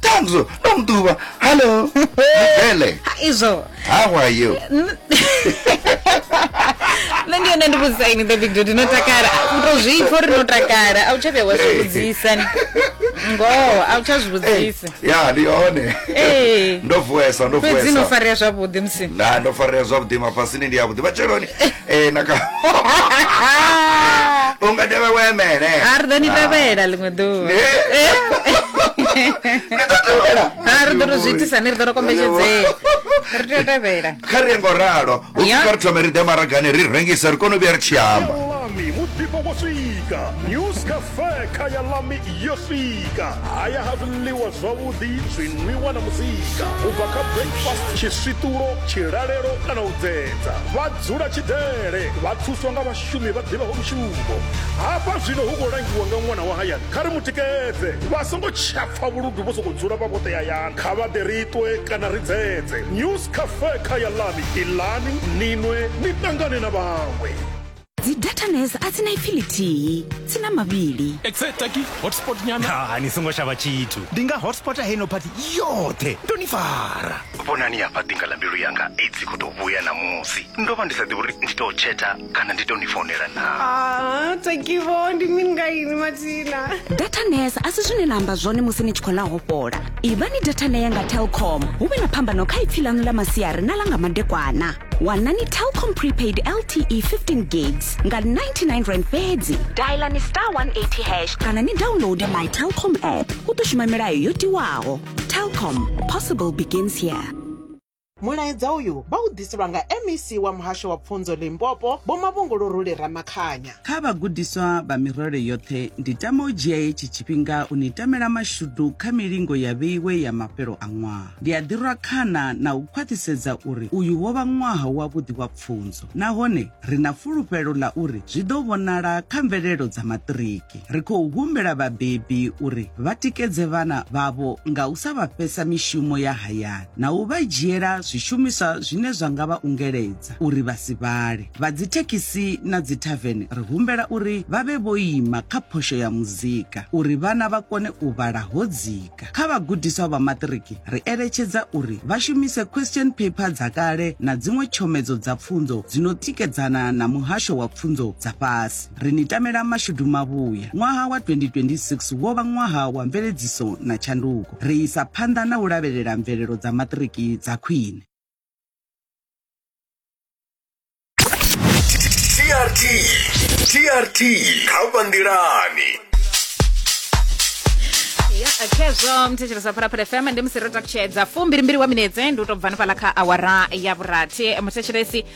tanzo ndo mutuba hallo mvele Ha, izvo how are you nṋe ndi yone ndi vhudzisa ini the big dodi inotakala utozviipfa uri inotakala a u tsha vhuya wa zwi vhudzisa ni. ngoho a u tsha zwi vhudzisa ya ndi hone Eh. ndo vuesa ndo fhedzi vuesa inofarea zwavhuḓi musi na ndo farea zwavhuḓi mafhasini ndi yavhuḓi matsheloni ee na kha u nga dovhe we mele a ri ḓo ni tevhela ḽiṅwe ḓuvha Eh, ni ḓo tevhela a ri ḓo to zwi itisa ni ri ḓo to kombetshedzea ri tea u tevhela kha ri ye ngo ralo u Ya. kha ri thome ri ḓe maragani ri rengise ri kone u vhuya ri tshi amba Lami, muḓifho wo swika. News Cafe feka ya lami yo swika haya ha zwiḽiwa zwavhuḓi zwinwiwa na muzika u bva kha breakfast tshiswiṱulo tshilalelo kana u dzedza vha dzula tshidele vha thuswa nga vhashumi vha ḓivhaho mushumo hafha zwino hu khou langiwa nga ṅwana wa hayani kha ri mu tikedze vha songo tshapfa vhuludu vho sokou dzula vha vhoṱe hayani kha vha ḓe ri ṱwe kana ri dzedze news cafe kha ya lami iḽani ninwe ni ṱangane na vhaṅwe dzi datanes a dzi na ipfi lithihi dzi na mavhili exetaki hotspot nyana ha ni songo shavha tshithu ndi nga hotspota heno pati yoṱhe ndo ni fara vhonani hafha ḓinga ḽa mbilu yanga idzi khou tou vhuya ṋamusi ndo vha ndi sa ḓivhi uri ndi tou tsheta kana ndi tou ni founela na Ah, takivo ndi mini nga ini matina datanes a si zwine na amba zwone musi ni tshi khou ḽa hopola ivhani datanea nga telcom hu vhe na phambano kha ipfi ḽanu ḽa masiari na ḽa nga madekwana wanani telcom prepaid lte 15 gigs nga 99 rand fhedzi dialani star 180 hash kana ni downloade my telcom app u ḓo shuma milayo yo tiwaho telcom possible begins here mulaedza uyu vha u ḓiselwa nga mec wa muhasho wa pfunzo limpopo vho mavhunguluruli ramakhanya Kha vhagudiswa vha mirole yoṱhe, ndi tama u dzhia hetshi tshifhinga u ni tamela mashudu kha milingo ya vheiwe ya mafhelo a ṅwaha. Ndi a ḓirwa khana na u khwaṱhisedza uri uyu wo vha ṅwaha wavhuḓi wa pfunzo nahone ri na fulufhelo ḽa uri zwi ḓo vhonala kha mvelelo dza maṱiriki. Ri khou humbela vhabebi uri vha tikedze vhana vhavho nga u sa vha fhesa mishumo ya hayani. na u vha dzhiela zwishumiswa zwine zwa nga vha ungeledza uri vha si vhale. Vha dzithekhisi na dzithavene ri humbela uri vha vhe vho ima kha phosho ya muzika uri vhana vha kone u vhala ho dzika. Kha vhagudiswa vha maṱiriki ri eletshedza uri vha shumise question paper dza kale na dziṅwe tshomedzo dza pfunzo dzi no tikedzana na muhasho wa pfunzo dza fhasi. Ri ni tamela mashudu mavhuya. Ṅwaha wa 2026 wo vha ṅwaha wa mveledziso na tshanduko. Ri isa phanḓa na u lavhelela mvelelo dza maṱiriki dza khwine. TRT TRT kha vha nḓilani khezwo muthetshelesa phalaphala fm ndi musi ro takutshedza fumbili mbili wa minetse ndi u tou bva hanefhaḽa kha awara ya vhurathi muthetshelesi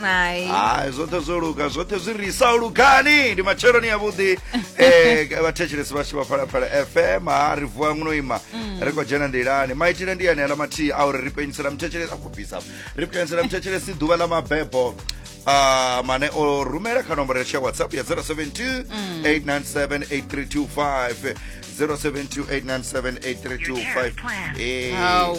Hai. hai zwoṱhe zwo luga zwoṱhe zwi ri sa lugani ndi matsheloni avhuḓi eh, vhathetshelesi vhashu vha phalaphala fm ha ri vuwa ngno ima ri khou dzhena nḓilani maitele ndi ane aḽa mathihi a uri ri penyisela muthetshelesi a khou bvisa ri penyisela muthetshelesi ḓuvha ḽa mabebo Ah, mane o rumela kha nomboro yashu ya whatsapp ya 072 897 8325 072 897 8325 Eh, Hau.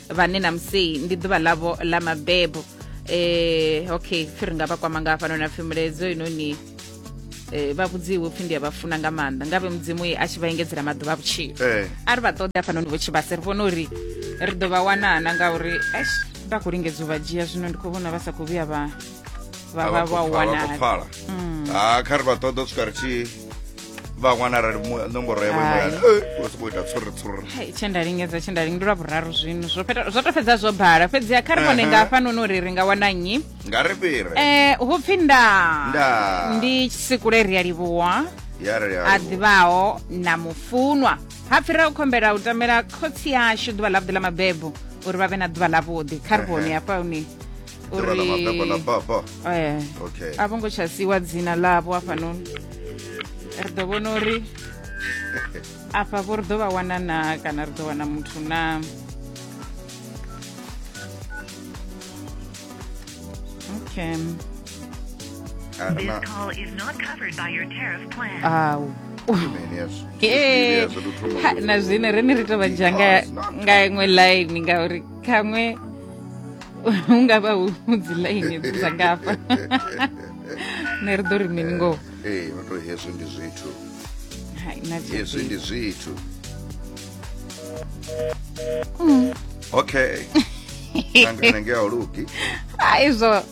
vhane na musei ndi ḓuvha ḽavho ḽa mabebo um okay pfi ri nga vha kwama nga hafhanoni apfi muledzo inoni um vha vhudziwe upfi ndi a vha funa nga maanḓa ngavhe mudzimu a tshi vha engedzela maḓuvha a vhutshilo eh. a ri vha ṱoḓe hafhanoni vho tshivhase ri vhone uri ri ḓo vha wanana ngauri ash vha khou lingedza u vha dzhia zwino ndi khou vhona vha sa khou vhuya vha vha vha wanala mm. ah, kha ri vha ṱoḓa u swika ri tshi vhaṅwana arali nomboro yavho imelana u sokou ita tsuri tsuri tshe nda lingedza tshe nda lingdula vhuraru zwino zwo to fhedza zwo bala fhedzi a kha ri vhone nga hafhanoni uri ri nga wana nnyi nga ri fhire um eh, hu pfi nda ndi sikule ri a livhuwa a ḓivhaho na mufunwa ha pfira u khombela u tamela khotsi yashu ḓuvha ḽavhuḓi ḽa mabebo uri vha vhe na ḓuvha ḽavhuḓi kha ri vhone hafha hune dzina ḽa mabebo ḽa baba eh, okay a vho ngo tsha siwa dzina ḽavho hafhanoni ri ḓo vhona uri afha vho ri ḓo vha wana na kana ri ḓo wana muthu na okay Ah, This na- call is not covered by your tariff plan. au mini hezwo Eh, Hezwo ndi thoma ha, na zwine rine ri tovha dzha nga nga iṅwe line ngauri khaṅwe hu nga vha hu dzi ḽaini dza ngafha nṋe ri ḓo ri mini ngoho ee no tou hezwi ndi zwithu hezwi ndi zwithu mm. okay nangana nge a lugi a izwo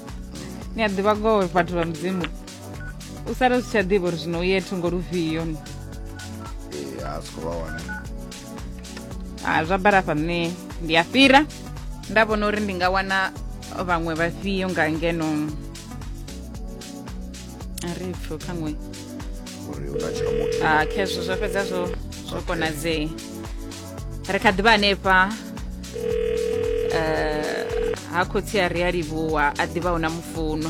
ni a ḓivha ngoho vhathu vha mudzimu u sala zwi tsha ḓivha uri zwino u ye thungo lufhio ee a si khou vha wana ha zwa bala hafha nṋe ndi a fhira nda vhona uri ndi nga wana vhaṅwe vhafhio nga ngeno a ri pfo khaṅwe a khezwo zwo fhedza zwo zwo konadzee ri kha ḓivha hanefha eh, ha khotsi a ri a livhuwa a ḓivha hu na mufuno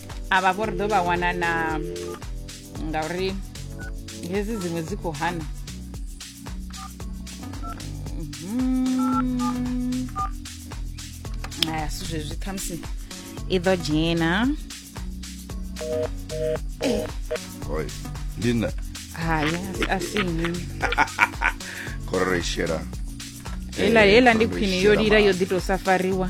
avha vho ri ḓo vha wana na ngauri hezi dziṅwe dzi khou hana mhm. aya si zwezwi khamusi i ḓo dzhena oi ndi nṋe hai a si nnyi khororo i shela hela hela ndi khwine yo lila yo ḓi tou safariwa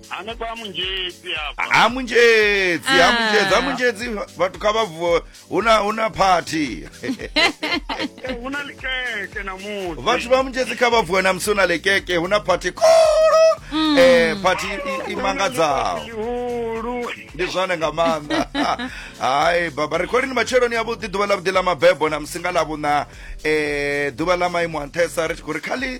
hanefha ha munzhedzi hafha ha munzhedzi ha Ah. munzhedzi ha munzhedzi vhathu kha vha vuwe hu na hu na phathi Eh, hu na likeke na musi vhathu vha munzhedzi kha vha vuwe na musi hu na lekeke hu na phathi khulu eh phathi i- i mangadzaho lihulu ndi zwone nga maanḓa hayi baba ri khou lini matsheloni avhuḓi ḓuvha ḽa vhuḓi ḽa mabebo na musi nga ḽa vhuṋa um ḓuvha ḽa maimo a nṱhesa ri tshi khou ri kha ḽi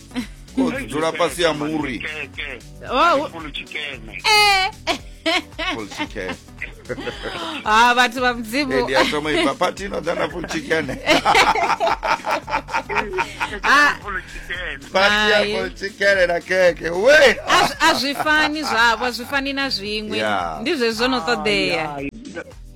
ko dzula fhasi ya muri Oh, u- eh. full chicken ah vhathu vha mudzimu Eh, ndi a thoma ifa pati ino dzana full chicken Ah. pati ya Hai. full chicken na keke we A zwi- a zwi fani zwavho a zwi fani na zwiṅwe Yeah. ndi zwezwo no ṱoḓea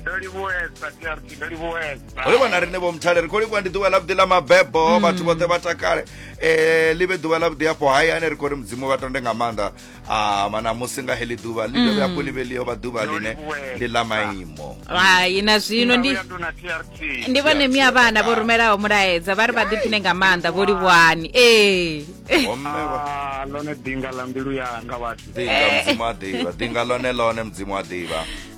ndo livhuwesa trc ndo livhuwesa ri vhona riṋe vho mthale ri khou livhuwa ndi ḓuvha ḽavhuḓi ḽa mabebo mm. vhathu vhoṱhe vha takale um ḽi vhe ḓuvha ḽavhuḓi afho hayani ri khou ri mudzimu vha tonde nga maanḓa ama na musi nga heḽi ḓuvha ḽi dovhe hafho mm. ḽi vhe ḽi yo vha ḓuvha ḽine ḽi ḽa maimo hai na zwino ndi vhone mia vhana vho rumelaho mulaedza vha ri vha ḓiphine nga maanḓa vho livhuhani ee ah, lone dinga ḽa mbilu yanga vhathu dinga mudzimu a ḓivha dinga lone lone mudzimu a ḓivha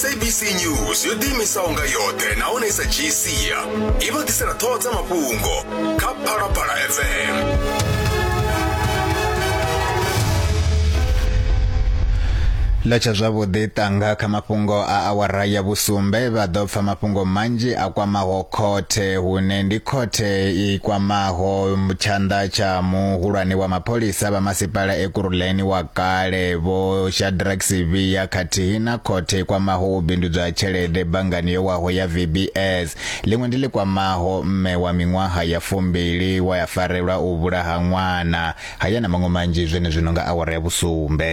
sabc news yo ḓiimisaho nga yoṱhe nahone i sa dzhii sia i vha ḓisela ṱhoho dza mafhungo kha phalaphala fm ḽa tsha zwavhuḓi tanga kha mafhungo a awara ya vhusumbe vha ḓo pfa mafhungo manzhi a kwamaho khothe hune ndi khothe i kwamaho tshanḓa tsha muhulwane wa mapholisa vha masipala Kuruleni wa kale vho Shadrack Sivhiya khathihi na khothe i kwamaho u bindudzwa ha tshelede banngani yo waho ya VBS ḽiṅwe ndi ḽi kwamaho mme wa miṅwaha ya fumbili wa ya farelwa u vhulaha ṅwana haya na maṅwe manzhi zwenezwino nga awara ya vhusumbe.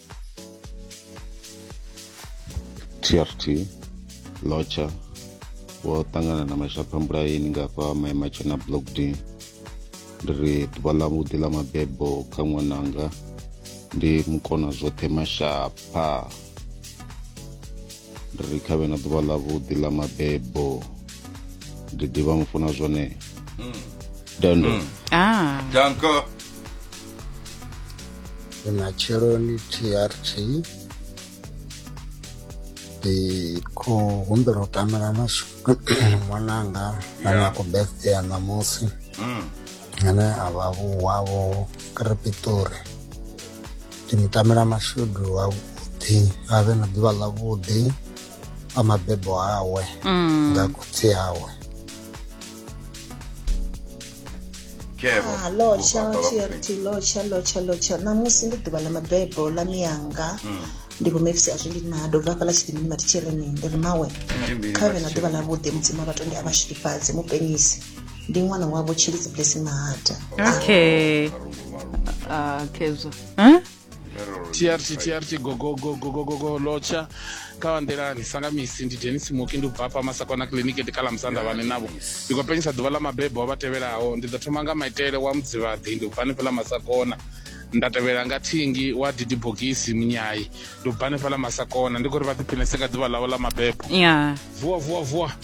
trt locha vho ṱangana na mashapha mbulaini nga fha maematshe na block d ndi ri ḓuvha ḽa vhuḓi ḽa mabebo kha ṅwananga ndi mukona zwoṱhe mashapha ndi ri khavhe na ḓuvha ḽa vhuḓi ḽa mabebo ndi ḓivha mufuna zwone mm. dando mm. ah. danko ndi matsheloni trt ndi khou humbela u tamela mashudu ṅwananga ane a khou birthday ya ṋamusi Mm. ane a vha vhuwavho krepitori ndi mu tamela mashudu avhuḓi a vhe na ḓuvha ḽavhuḓi a mabebo awe nga khotsi awe lotshalotshalotshalotsha ṋamusi ndi ḓuvha ḽa mabebo ḽa miyanga hmm. ndi vho mefisi azwi ndi nado bva hafhaḽa tshidimini vha thitsheleni ndi ri mawe kha vhe na ḓuvha ḽavhuḓi mudzimu vhatonde a vhashilifhadze mupenyisi ndi ṅwana wavho tshilidzi blessing mahata okay uh, kezwa huh? trt trt gogogogogogogo lotsha kawandelani sanga misi ndi denis muki ndi ubva hafha masakona kiliniki ndi kala musanda vhane navho ndi khou penyisa ḓuvha ḽa mabebo a vha tevhelaho ndi ḓo thoma nga maitele wa mudzivhaḓi ndi ubva hanefha ḽa masakona nda tevhela nga thingi wa didi bogisi munyayi ndi ubva hanefha ḽa masakona ndi khou ri vha ḓiphinese nga ḓuvha ḽavho ḽa mabebo ya vuwa vuwa vuwa